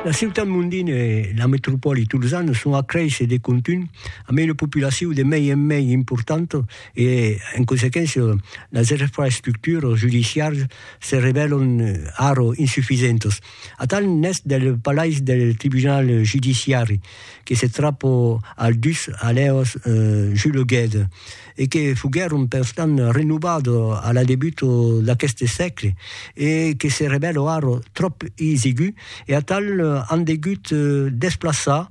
La ciutat mondina e la metropòli tolzana son a créisser de contunh amb una populacion de mei en mei importanta e, en consequéncia, las infraestructuras judiciaras se revèlan ara insufisentas. Atal n'es del palais del tribunal judiciari que se trapa al dus alèuas Jules Guedre. e que foguèron perstant renovats a la debut d'aqueste sègle e que se revèlo ara tròp isigu e atal an degut desplaçar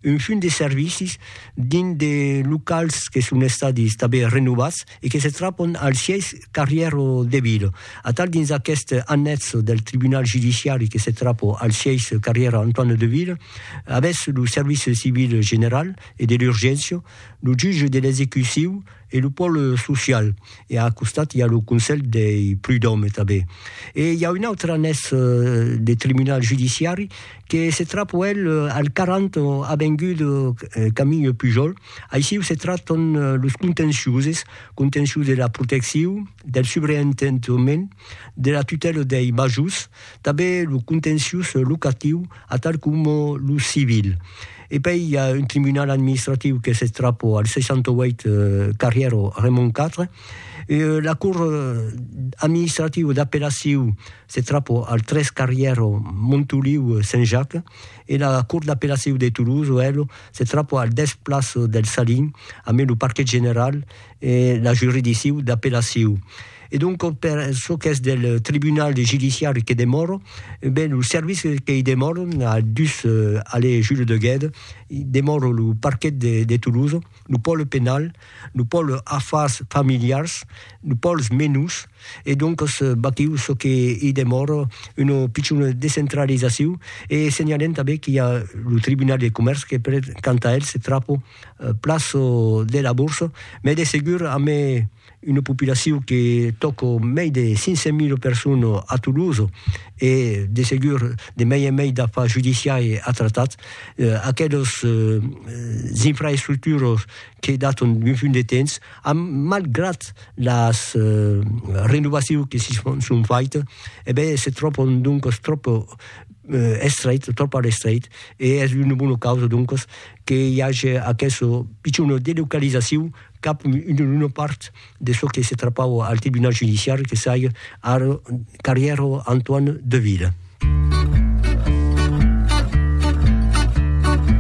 un fum de servicis dins de locals que son estadis tanben renovats e que se trapon al sièis carrièr de Vila. Atal dins aquest annètz del tribunal judiciari que se trapo al sièis carrièr Antoine de Vila avètz lo service civil general e de l'urgéncia, lo juge de l'execuciu e lo pòl social e a costat i a lo consell dei prud'òmes tanben e i a un autre anés de tribunal judiciari que se trap uèlh al 40 avenguda Camille Pujol aissiu se tratan los contenciuses contencius de la protecciu del subreentendement de la tutèla dei majors, tanben lo contenciós locatiu atal coma lo civil. E pei i a un tribunal administratiu qu'es eth Trapo al 68 carrièr Raymond 4, la cort administrativa d'apellacion s'eth Trapo al 3 carrièr Montoliu Saint Jacques e la cort d'apellacion de Toulouse o hèlo s'eth Trapo al 10 plaça del Salin, amben lo parquet general e la juridiccion d'apellacion. E donc per çò qu'es del tribunal judiciari que demòro, ben lo service qu'ei demòro a dus allée Jules de Guede, demòro lo parquet de de Toulouse, lo pòle penal, lo pòle afars familiars, lo pòles menus, e donc vaquiu çò qu'ei demòro una pichona descentralizacion, e senhalem tanben qu'i a lo tribunal de comèrç que per quant a el se trapo plaço de la Bourse, mès de segur a me una populacion que tòco mei de 500.000 persones a Toulouse e de segur de mei en mei d'afars judiciaires a tratar, aquelas infraestructuras que daton d'un funt de temps an, malgrat las renovacions que s'i son faites, e ben se tròban doncas tròp estrechas, tròp a l'estret, e es una bona causa doncas que i age aquessa pichona delocalizacion cap una part de çò que se trapava al tribunal judiciari que saiga ar carrièr Antoine Deville.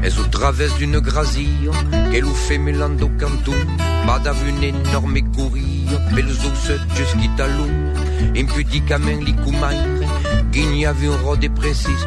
Es au travès d'una grasia que lo femelan dau canton va dab un enòrme coria pelos dous sòtges quitalon, impudiquament li comaire, guinhava un ròde precís,